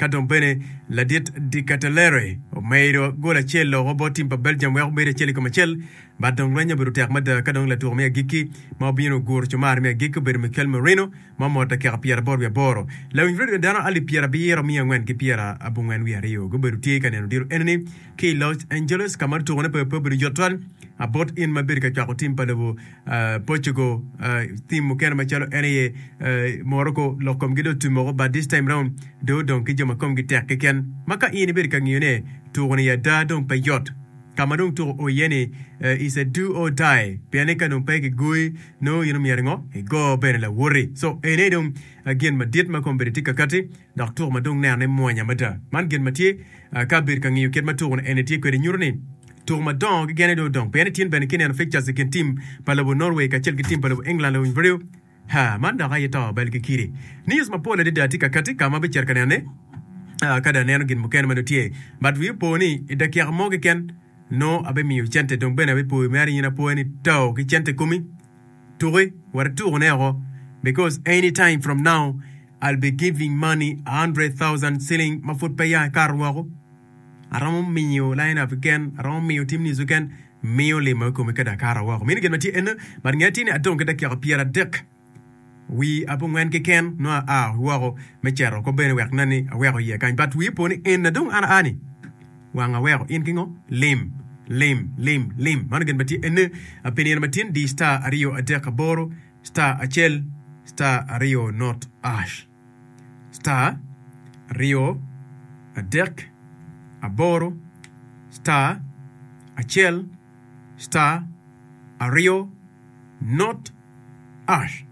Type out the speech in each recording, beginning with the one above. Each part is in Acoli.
Ka dong bene ladit Dikatelere omedo gol acel loko bot tim pa Belgium wek obed acel i kom acel, but dong lweny-nyo obedo tek mada ka dong latuko me agikki ma obino oguro cumar me agikki obedo Mikel Merino ma omoto dakika pyeraboro wiye aboro. Lawiny redio dano alip pyerabiro miya angwen ki pyera abongwen wiye aryo gubedo tye ka neno diro enini ki i Los Angeles ka ma tutukone pe obedo yot twal bot in ma ibedo ka cwako tim pa lobo. Portugal, tim mukene macalo en aye Morocco lok komgi dong otum woko but this time round dong odong ki jo ma komgi tek keken ma ka in ibedo ka ngiyo ne tuko ni ada dong pe yot ka ma dong tuko oo iye ni is a do or die pien ni ka dong pe ki goyi nongo in omyero ngo igo bene lawoti so en aye dong gin madit ma kong bedi tye kakati dok tuko ma dong neno ne mwonya mada man gin ma tye ka bedo ka ngiyo kit ma tuko ni eni tye kwede nyuto ni Tuko madongo kekeni dong odong pien ityen bene kineno fixtures i kin tim pa lobo Norway kacel ki tim pa lobo England lawiny biriyo. Ha, man dok aye to bal ki kidi! News mapol adada tye kakati ka ma abicito ka nenone ka dong aneno gin mukene ma dong tye. But wi opo ni i dakika mo keken nongo abimiyo cente dong bene abipoyo mere in apoya ni too ki cente komi tuki wara tukone oko because any time from now I'll be giving money a hundred thousand shilling ma pud pe ya ikato woko. Aromo miyo lain abi gen, aromo miyo tim nizu gen, miyo lima i komi kadi akara woko. Mini gen matye eno, but nge atini adong ki dakiaka pyer adek wi abongwen kiken nongo aa woko me ceto oko bene wek nen ni aweko iye kany, but wi opo ni en na dong an aa ni wang aweko in kingo? Lim, lim, lim, lim. Mano gen matye eno, apenira matin di star aryo adek aboro star acel star aryo not ash. star aryo adek aboro star acel star aryo not ash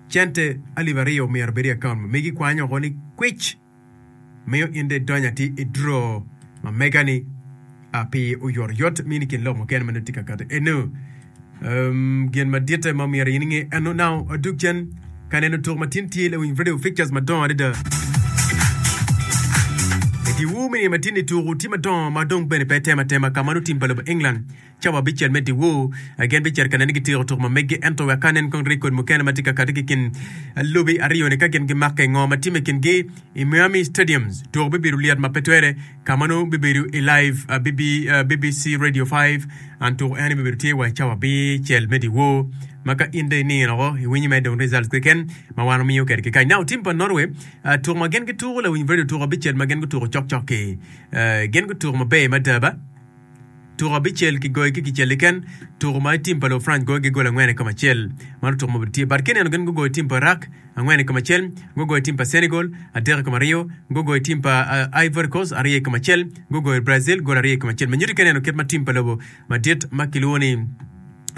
cente alip aryo myero obed i akaunt ma megi kwanyo woko ni kwic. miyo in dong idonyo atir i dro ma mega-ni pi oyotoyot ma in i kin lok mukene ma nongo itye ka kato iye. Eno gin maditte ma myero in inge. Eno nongo dug cen ka neno tuk ma tin tye lawiny vidio pictures madongo adada. Itiwu me niye ma tin-ni tuk-gu tye madongo ma dong bene pe tem atema ka ma lutim pa lobo England Cawa bicel medde-wu. Gen bicito ka neni gitiko tuk ma meggi, ento wek ka nen kong reg kodi mukene ma tye ka kati ki i kin lobi aryo-ni ka gin gimakke. Ngo ma timme i kingi? I Miami Stadiums, tuko bibedo lyet ma pe twere, ka ma nongo bibedo i live BBC Radio 5, and tuko eni bibedo tye wa i cawa bicel medde-wu, ma ka in dong iningo loko, iwinyo mere dong results keken ma wan wamiyo kede kikany. Now, tim pa Norway, tuk ma gen gituko lawiny radio tuko bicel ma gen gutuko cok cok-ki. Gen gutuko maber mada ba. Tuku abicel kigoyo ki kicel keken, tuku ma tim pa Lufrance goyo ki gol angwen i kom acel. Mano tuku ma obedo tye bad kineno gin gugoyo tim pa Iraq angwen i kom acel, gugoyo tim pa Senegal adek i kom aryo, gugoyo tim pa Ivory Coast aryo i kom acel, gugoyo Brazil gol aryo i kom acel. Me nyuti kineno kit ma tim pa lobo madit ma kilwongo ni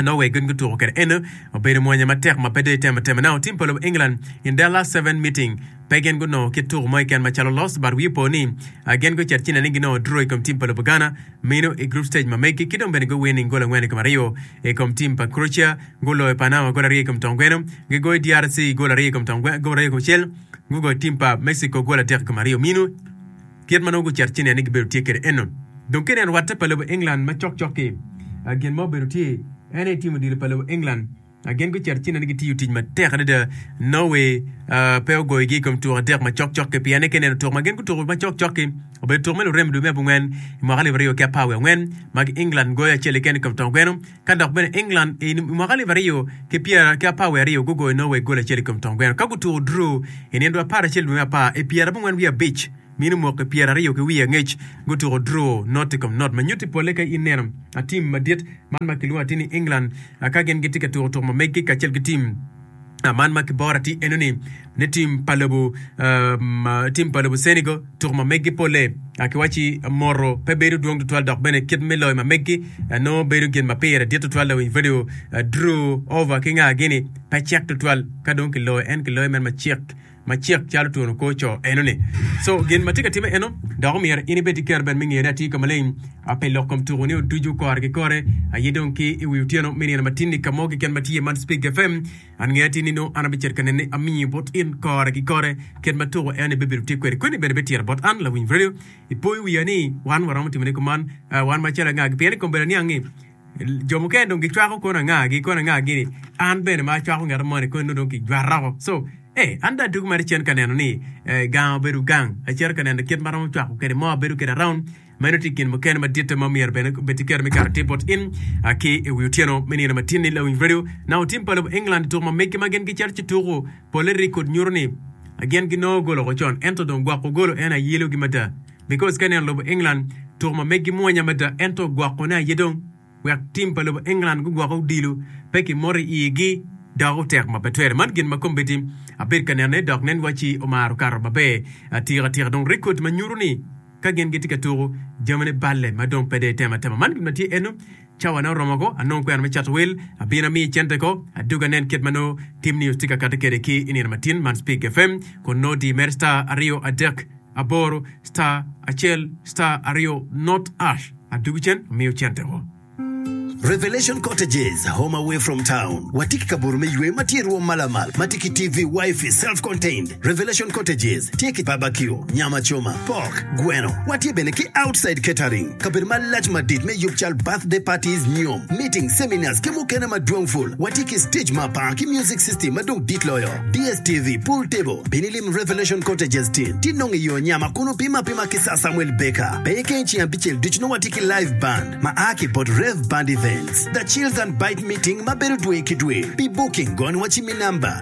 nongo wek gin gutuko kwede. Eno obedo mwanya matek ma pe dong itemo atema. Now, tim pa lobo England in their last seven meeting, pe gin gunongo kit tuko mo keken macalo loss, but wiyi po ni ah, gin gucito ci nene ni ginongo draw i kom tim pa lobo Ghana, mino i group stage ma megi, ki dong bene gu winning gol angwen i kom aryo i kom tim pa Croatia, guloyo Panama gol aryo i kom tongweno, gigoyo DRC gol aryo i kom tongweno, gol aryo i kom acel, gugoyo tim pa Mexico gol adek i kom aryo. Mino. Kit ma nongo gucito ci nen ni gibedo tye kwede eno. Dong kene en rwatte pa lobo England ma cok cok-ki. Gin ma obedo tye en aye tim odilo pa lobo England. Gin gucito ci nen ni gitiyo tic matek adada. Norway pe ogoyogi i kom tuko adek ma cok cok-ki pien ni ka ineno tuko ma gin gutuko ma cok cok-ki, obedo tuko me lurem i dwe me abongwen i mwaka alip aryo ki apar wiye angwen ma England goyo acel keken i kom tongweno. ka dok bene England i mwaka alip aryo ki pyera ki apar wiye aryo gugoyo Norway goli acel i kom tong gweno ka gutuko draw i nino dwe apar acel dwe me apar i pyera abongwen wiye abic mi nongo mwaki pyera aryo ki wiye angec gutuko draw not i kom not ma nyutti polle ka ineno tim madit man ma kilwongo atir ni England ka gin gitye ka tuko tuko ma meggi kacel ki tim Man ma kibora tye eno ni ne tim pa lobo tim pa lobo Cenigo tuku ma meggi polle ki waci moto pe bedo dwong tutwal dok bene kit me loyo ma meggi nongo bedo gin ma pire dit tutwal lawiny vedio Drew over ki nga gini pe cek tutwal ka dong kiloyo en kiloyo men ma cek macek calo twon kor co enoni. Co gin ma tye ka timme eno, dok omyero in ibed ki kero bene me ngene atir ka maleng ape lok kom tuku ni oducu kore ki kore aye dong ki i wi otyeno me nino matinni ka mo keken ma tye man Spig FM an nge atir ni nongo an abicito ka nene amiyo bot in kore ki kore kit ma tuku eno ibebedo tye kwede kweni bene betira bot an lawiny radio ipoyo wiya ni wan waromo timone kuman wan macalo angagi pien i kom bedo aniang ni Jo mukene dong gicwako kono angagi, kono angagi ni an bene ma acwako ngeta moni kono dong kijwara woko. So, eh, an dong atuko mere cen ka neno ni eh, gang obedo gang. Acito ka neno kit ma romo cwako kede mo abedo kede around. Meno ti gin mukene maditte ma myero bene bed tiketo me kato tip bot in ah, ki i wi otyeno me nino matin ni lawiny radio. Naka otim pa lobo England i tuko ma meggi ma gin gicito ci tuko, polle record nyuto ni ah, gin ginongo gol woko con. Ento dong gwoko golo en aye ilogi mada. Nichols kene lobo England tuko ma megi mwonya mada ento gwokone aye dong wek tim pa lobo England gugwoke odilo pe ki mot i igi dok otek ma pe twere. Man gin ma kombeddi abedo ka nene dok nen wacci omaro kato maber atika tika dong rekod ma nyuto ni ka gin gitye ka tuko jamine balle ma dong pe dong itemo atema. Man gin ma tye eno. Cawane oromo ko, anongo kwena me cato wel, abino amiyi cente ko. Adwogi anen kit ma nongo Tim News tye ka kati kwede ki i nino matin man, Speak FM, kun nongo diyi mere star aryo adek aboro star acel star aryo not ash, adwogi cen amiyo cente ko. Revelation Cottages, home away from town, watye ki kabuto me ywe ma tye i rwom malamal ma tye ki TV, Wifi, self-contained. Revelation Cottages tye ki babakio, nyam acoma, pok, gweno. Watye bene ki Outside Catering, kabedo malac madit me yub cal birthday parties, nyom, meetings, seminars ki mukene madwong pul. Watye ki stage ma par ki music system ma dong dit loyo, DSTV, pool table. Bino ilim Revelation Cottages tin ci inong iyo nyama kun opim apima ki Sir Samuel Baker. Peye kene ceng abicel ducu nongo watye ki live band ma a ki bot Rev Band Events. The Chills and Bite Meeting ma bedo dwe ki dwe. Pi booking gony wa ci mi number.